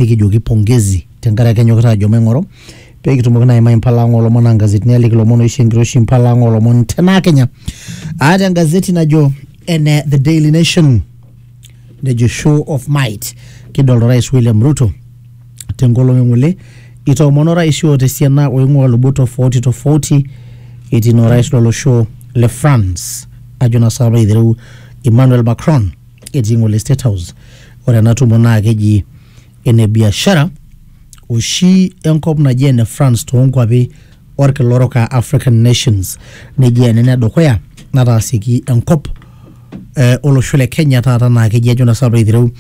nikijoki pongezi tenkaraki enyokita ajo maing'oru pee kitumoki naa aimai impala ang oolomon naa nkazetini aliki ilomon oisho enkiroshi impala ang oolomon tenaa kenya aata engazeti najo ene the daily nation nejo show of might kidolta orais william ruto tenkolong eng'ole itoomono orais oota esiana oing'ua lubot tofauti tofauti etii naa orais lolosho le france ajo naa saapa aitereu emmanuel macron etii ng'ole State House. Ore ena tumo naa keji ene biashara oshi enkop naji ene France toonkuapi olkila orok aa African nations. Neji ena ene dukuya nataasieki enkop eh, olosho le Kenya taata naa keji ajo naa sinanu piilo aitereu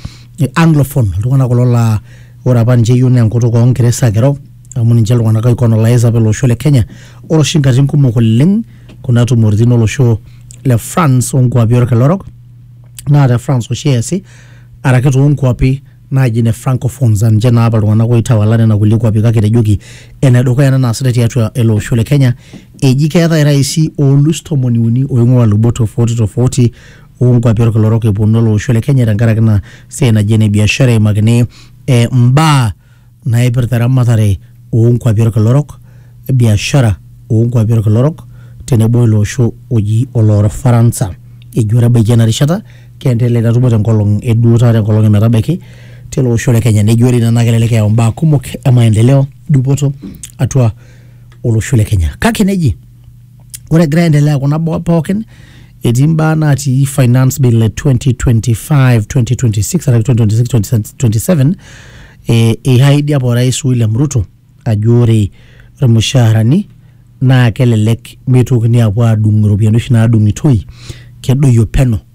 anglophone iltung'anak kulo laa ore apa ninche eyieu naa enkutuk oo ngeresa ake eiro amu ninche iltung'anak oikolonais apa ele osho le Kenya. Ore oshi nkatitin kumok oleng kuna tumoritin olosho le France onkuapi olkila orok naa te France oshi eesi araki toonkuapi naaji ne francophones aa ninche naa apa iltung'anak oitawala nena kulie kuapi kake etejoki enedukuya ena naasitai tiatua ele osho le Kenya eji keetae iraisi oolus tomoni uni oing'ua ilubot tofauti tofauti oonkuapi orkila orok eponu ele osho le Kenya tenkaraki ina siai naji ene biashara eimakini eh, imbaa naipirta eramatare oo nkuapi olkila orok, biashara oo nkuapi olkila orok tenebo ilo osho oji Oloofaransa. Eji ore ebaiki ena rishata keendelea ina tumo tenkolong e duo taata enkolong e metabaiki tele osho le Kenya. Neji ore ina naa kelelek eyau imbaa kumok e maendeleo, dupoto atua olosho le Kenya. Kake neji ore egira aendelea kuna baa pookin etii mbaa natii finance bill e 2025 2026 araki 2026 2027 eh, eihaidi apa orais William Ruto ajo ore irmushaarani naa kelelek meitokini apuo aadung iropiyiani oshi naadung'itoi kedoyio peno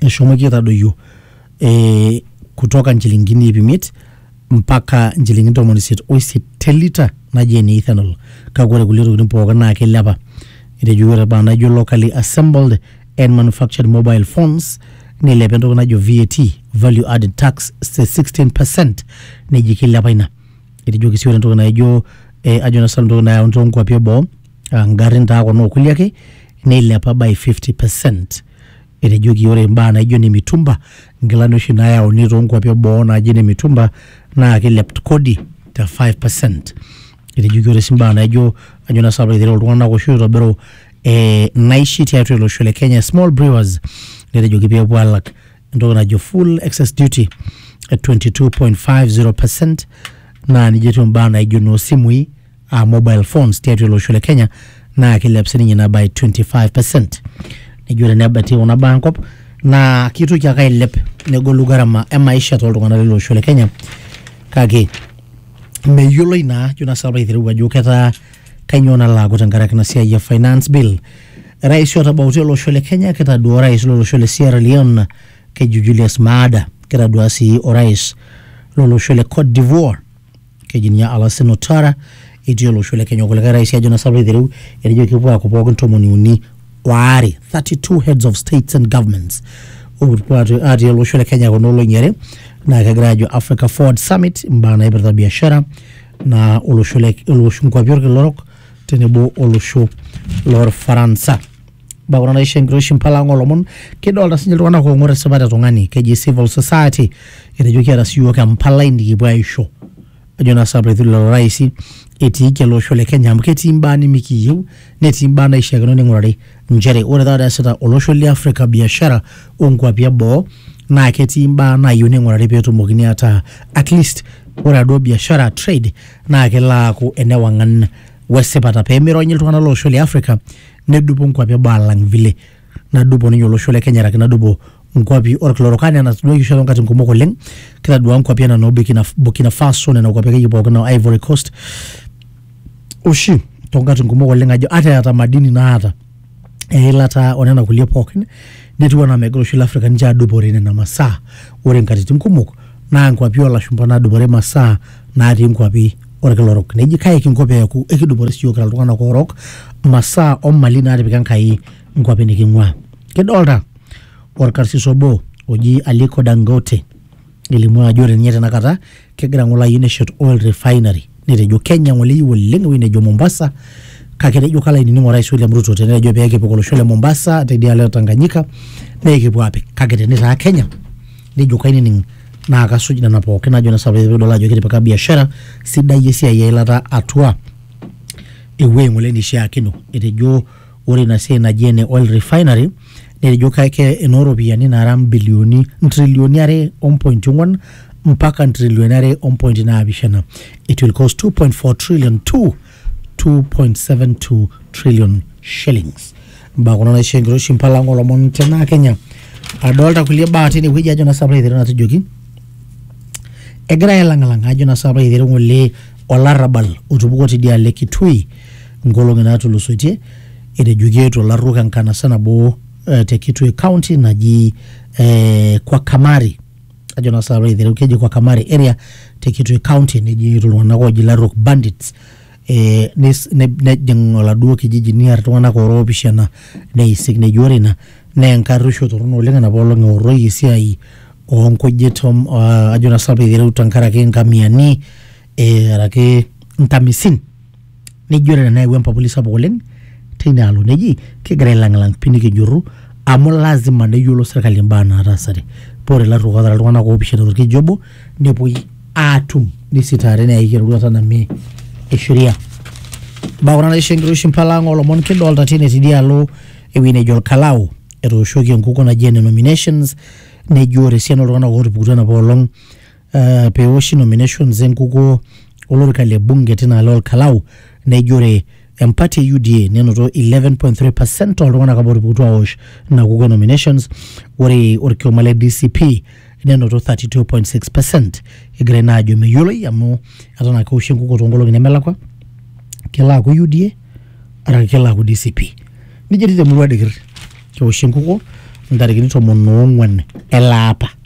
eshomoki aitadoyio eh, kutoka nchilingini iip imiet mpaka nchilingini ntomoni isiet oisiet te lita naji ene ethanol kake ore kulie tokitin pookin naa kilepa etejo ore baa naijo locally assembled and manufactured mobile phones nilepa entoki najo VAT value added tax te 16 percent neji kilepa ina etejoki sii ore entoki naijo eh, ajo nasilu entoki nayauni toonkuapi eboo aa ngarrin taa kuna okulie ake neilepa by 50 percent Etejoki ore imbaa naijo ine mitumba, nkilani oshi naayauni too nkuapi e boo naaji ine mitumba naa keilep kodi te 5 percent. Etejoki ore sii imbaa naijo ajo naa sii nanu pee aitereu iltung'ana oshi oitobiru ee naishi tiatua ele osho le Kenya, small brewers, netejoki pee epuo aalak entoki najo full excess duty e 22.50 percent naa nijo etiu imbaa naijo inoo simui. aa mobile phones tiatua ele osho le Kenya naa kiilep sininye ina by 25 percent. Nejo tenebaiki kuna baa enkop naa kitoki ake ailep negolu gharama e maisha toltung'anak lele osho le Kenya kake meyioloi naa ajo naa sababu aitereu ajo ketaa kainyoo nalo aaku tenkaraki ina siai e finance bill. Rais otabautua ele osho le Kenya kitaduaa orais lo losho le Sierra Leone keji Julius Maada, kitaduaa sii orais lo losho le Cote d'Ivoire keji ninye Alassane Ouattara etii olosho le Kenya kulikae rais ajo nasapuk aitereu etejo kepuo aaku pookin tomoni uni waare 32 heads of states and governments opuo aatu- atii olosho le Kenya kuna olong'i are naa kegira aajo Africa Forward Summit imbaa naipirta biashara naa olosho le olosho nkuapi olkila orok tenebo olosho lorfaransa. bakuna naisho enkiroshi mpala ang olomon kidolta sinye iltung'anak oong'or esipata e tung'ani keji civil society etejo kiata siyiok empalai nikipuo aisho ajo naa sababu etu lelo raisi etiiki ele osho le kenya amu ketii imbaa nimikiyieu netii imbaa naishiakino ning'urari nchere ore taata eesita olosho le afrika biashara onkuapi eboo naa ketii imbaa naayieu ning'urari petumokini ataa at least ore aduo biashara trade naa kelo aaku enewang'an wesipata pemironyi iltung'anak lolosho le afrika nedupo nkuapi eboo alang vile nadupo ninye olosho le Kenya araki nadupo nkuapi orkila orok anaa enatoduaki oshi toonkatin kumok oleng kitadua nkuapi anaa noo Burkina, Burkina Faso nena kuapi akeyie pookin noo Ivory Coast oshi toonkatin kumok oleng ajo ata eeta madini naata eilata onena kulie pookin netiu anaa megira oshi Afrika ninche adupore nena masaa ore nkatitin kumok naa nkuapi olashumpa nadupore masaa natii nkuapi orkila orok neji kae kinko peeku ekidupore siyiok kira iltung'anak oorok masaa omali natipika Enkai nkuapi niking'ua kidolta orkarsis obo oji Aliko Dangote elimu ajo ore ninye tenakata kegira ng'ole ayieu neshet oil refinery netejo Kenya ng'ole eyieu oleng ewueji nejo Mombasa kake etejo kalo ainining orais William Ruto tenetejo pekipik olosho le Mombasa tidialo e Tanganyika nekipuo apik kake tenitaa Kenya nejo kainining naa kasuj nena pookin najo nesa pidol ajo kitipika biashara sidai esiai eilata atua ewuei ng'ole nishiakino etejo ore ina siai naji ene oil refinery netejo kake enooropiyiani naara mbilioni ntrilioni are ompointi ong'wan mpaka ntrilioni are ompointi naapishana it will cost 2.4 trillion to 2.72 trillion shillings mbaa kuna naisho enkiroshi mpala ang olomon tenaa kenya adolta kulie baa tinewueji ajo naa sapra aiteru natujoki egirae ailang'ilang'a ajo naa sapra aiteru ng'ole olarrabal otupukuo tidialo e kitui nkolong'i natulusoitie etejoki eetuo ilarruok enkanasa nabo eh, te kitui county naji eh, kwa kamari ajo naa sasa aiteru keji kwa Kamare area te Kitui County neji iltung'anak ooji Larok bandits eh, nes- ne- nejing oladuo kijiji niar iltung'anak oora oopishana neisik neji ore ina naa enkarruisho torrono oleng enapa olong eorroyie esiai oonkujit om- ah, ajo naa sasa aiteru tenkaraki inkamiani eh, araki inkamisin nejo ore tenayawua empapuli sapuk oleng teina alo neji kigira ailang'lang pii nikijurru amu lazima neyiolo sirkali imbaa nataasate paa ore ilarruok ootara iltung'anak oopishana torkijiji obo nepuoi aatum nisitaari neyae eroruata namie e sheria imbaa kuna naisho enkiroshi impala ang oolomon kidolta tine tidialo ewueji nejo olkalao etooshoki enkukuo naji ene nominations nejo ore esiana oltung'anak ootupukutuo enapa olong uh, peoshi nominations enkukuo olorika le bunge tina alo olkalau nejo ore empati e UDA nenoto 11.3% ooltung'anak apa otupukutuo aosh ina kukuo e nominations ore orkioma le DCP nenoto 32.6% egira ina ajo meyioloi amu eton ake eoshi enkukuo toonkolong'i nemelakwa kelo aaku UDA araki kelo aaku DCP nijia etiu temurua dikir keoshi enkukuo ntarikini tomon oong'wan ele apa